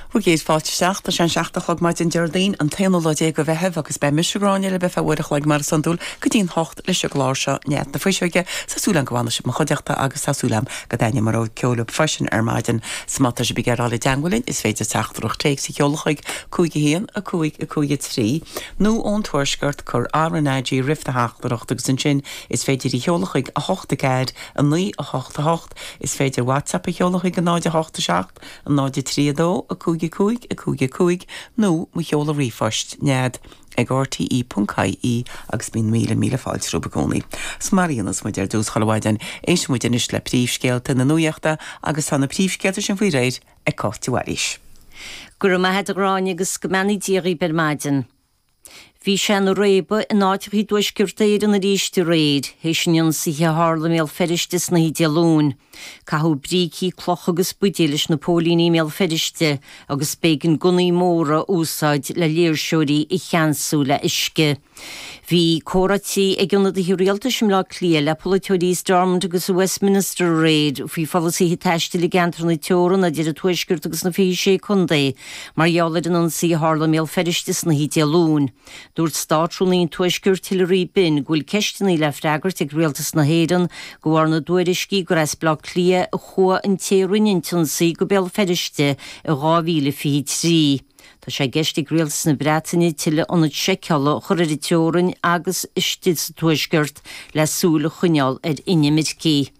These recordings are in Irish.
Bhur gcéad fáilte isteach tá sé an seacht a' chlog maidin Déardaoin an t-aonú lá déag de Mheitheamh agus beidh mise, Gráinne, libh ar feadh uair a chloig mar is iondúil go dtí'n hocht leis an gclár seo Nead na Fuiseoige, tá súil agam go bhfanfaidh sibh i mo chuideachta agus tá súil agam go dtaitneoidh mo rogha ceoil libh freisin ar maidin. So má tá sibh ag iarraidh a dhul i dteangmháil linn is féidir teachtaireacht téics a sheoladh chuig, 5 1, 5, 5, 3, nó ón Tuaisceart cuir RnaG roimh do theachtaireacht agus ansin is féidir í a sheoladh chuig, 8 4, 9, 8, 8. Is féidir WhatsApp a sheoladh chuig 0 8 7 0 3 2 5 5 5 5 nó mo sheoladh ríomhphoist, nead, ag rte.ie agus bíonn míle míle fáilte romhaibh i gcónaí. Is mar a dhéanas muid ar dtús chuile mhaidin, éisteann muid anois le príomhscéalta na nuachta agus tá na príomhscéalta sin faoi réir ag Cáit de Bhailís. Go raibh maith agat a Ghráinne agus go mbeannaí Dia dhaoib ar maidin. Bhí sé ina réabadh in áiteacha i dTuaisceart Éireann arís aréir, théis an ionsaithe a tharla i mBéal Feirste san oíche Dé Luain. Caitheadh brící, clocha agus buidéil leis na póilíní i mBéal Feirste agus b'éigean gunnaí móra a úsáid le léirseoirí a cheansú le huisce. Bhí comhráití ag ionadaithe rialtais i mBleá Cliath le polaiteoirí i Stormont agus i Westminster aréir faoi pholasaithe taistil i gceantar na teorann idir an Tuaisceart agus na 26 contae. Mar gheall ar an ionsaí a tharla i mBéal Feirste san oíche Dé Luain, dúirt Státrúnaí an Tuaiscirt Hilary Benn go bhfuil ceisteanna le freagairt ag Rialtas na hÉireann de bharr na dtuairiscí gur as Bleá Cliath a chuaigh an té a rinne an t-ionsaí go Béal Feirste i 2023. Tá sé i gceist ag Rialtas na Breataine tuilleadh ionad seiceála a chur ar an teorainn agus istigh sa Tuaisceart le súil a choinneáil ar inimircigh.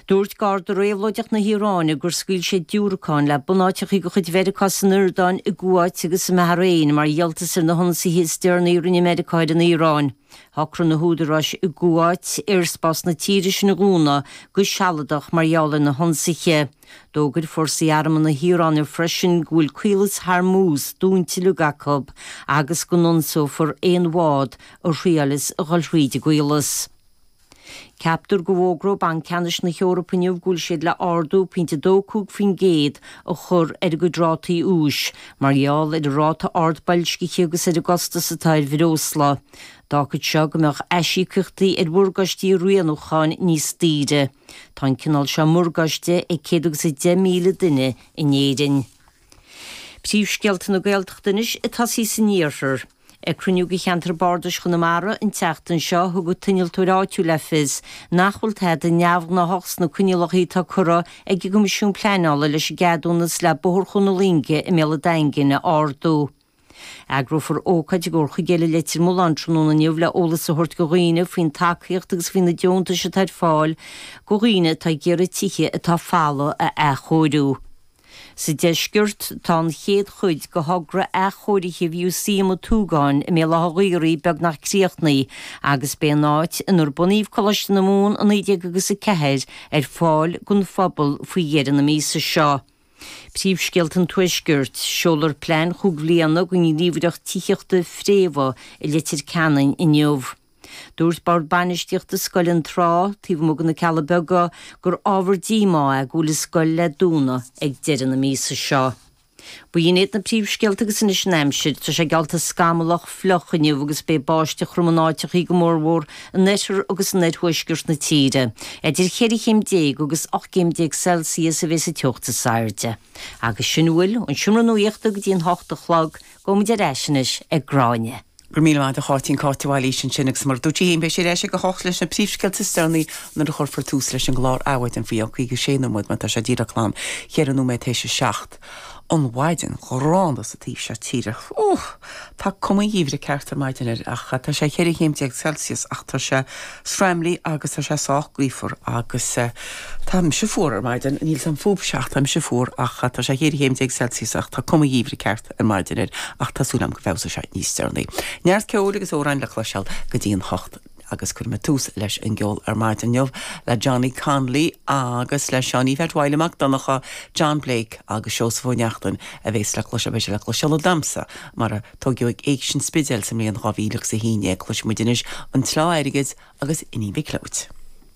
Dúirt Garda Réabhlóideach na hIaráine gur scaoil siad diúracáin le bunáiteachaí de chuid Mheiriceá san Iordáin, i gCuáit agus i mBahrain mar dhíoltas ar na hionsaithe is deireanaí a rinne Meiriceá ar an Iaráin. Shocraigh na húdaráis i gCuáit aerspás na tíre sin a dhúnadh go sealadach mar gheall ar na hionsaithe. D'fhógair fórsaí armtha na hIaráine freisin go bhfuil Caolas Hormuz dúnta uilig acu agus go n-ionsófar aon bhád a thriaileas a dhul thríd an gcaolas. Ceaptar go bhfógróidh Banc Ceannais na hEorpa inniu go bhfuil siad le ardú pointe dó cúig faoin gcéad a chur ar a gcuid rátaí úis, mar gheall ar an ráta ard boilscithe agus ar an gcostas atá ar bhreosla. D'fhágfadh seo go mbeadh aisíocaíochtaí ar mhorgáistí rianúcháin níos daoire. Tá an cineál seo morgáiste ag céad agus a deich míle duine in Éirinn. Príomhscéalta na Gaeltachta anois ag tosaí san iarthar. Ag cruinniú de cheantar Bardais Chonamara an tseachtain seo, thug an t-innealtóir áitiúil le fios nach bhfuil tada neamhgnáthach sna coinníollacha atá curtha ag an gCoimisiún Pleanála leis an gceadúnas le Bóthar Chuan na Loinge i mBéal an Daingin a ardú. Eagrófar ócáid i gComhar Chuigéal i Leitir Mealláin tráthnóna inniu le eolas a thabhairt go dhaoine faoin tacaíocht agus faoi na deontais atá ar fáil go dhaoine atá ag iarraidh tithe atá folamh a athchóiriú. Sa deisceart, tá an chéad chuid de thogra athchóirithe Mhúsaem an tSúgáin i mBéal Átha an Ghaorthaidh beagnach críochnaithe agus beidh an áit inar bunaíodh Coláiste na Mumhan i 19 agus a 4 ar fáil don phobal faoi dheireadh na míosa seo. Príomhscéalta an Tuaiscirt, Seolfar plean chúig bhliana do Ghníomhaireacht Tithíochta Fréamha i Leitir Ceanainn inniu. Dúirt Bord Bainistíochta Scoil Fhionntrá, taobh amuigh de na Cealla Beaga, gur ábhar díomá é go bhfuil an scoil le dúnadh ag deireadh na míosa seo. Ba shin iad na príomhscéalta agus anois an aimsir. Tá sé geallta scamallach, fliuch inniu agus beidh báisteach throm in áiteachaí go mór mhór in oirthear agus in oirthuaisceart na tíre. Eidir cheithre chéim déag agus ocht gcéim déag Celsius a bhéas an teocht is airde. Agus sin a bhfuil ón seomra nuachta go dtí an hocht a chlog. Gabhaimid ar ais anois ag Gráinne. Go raibh míle maith agat a Cháitín, Cáit de Bhailís ansin agus mar a dúirt sí fhéin beidh sí ar ais ag a hocht leis na príomhscéalta is deireanaí nuair a chuirfear tús leis an gclár Adhmhaidin faoi cheann 56 nóiméad, mar tá sé díreach glan cheithre nóiméad tar éis a seacht. An mhaidin ghránna sa taobh seo tíre. Tá cuma an gheimhridh ceart ar maidin air ach tá sé cheithre chéim déag Celsius ach tá sé. sraimlí agus tá sé sách gaofar agus tá mise fuar ar maidin, níl a fhios agam fúibhse ach tá mise fuar ach tá sé cheithre chéim déag Celsius ach tá cuma an gheimhridh ceart ar maidin air ach tá súil agam go bhfeabhsóidh sé níos deireanaí. Neart ceoil agus amhráin le cloisteáil go dtí an hocht agus cuirfidh mé tús leis an gceol ar maidin inniu le Johnny Connolly agus le Seáinín Pheait Mhaidhle Mac Donnacha, John Blake agus Seosamh Ó Neachtain a bhéas le cloisteáil, beidh sé le cloisteáil ag damhsa mar a. Tóigeadh ag Éigse an Spidéil sa mbliain 2000 agus a haon é, cloisfidh muid anois an tsleá airgid agus Iníon Mhic Leóid.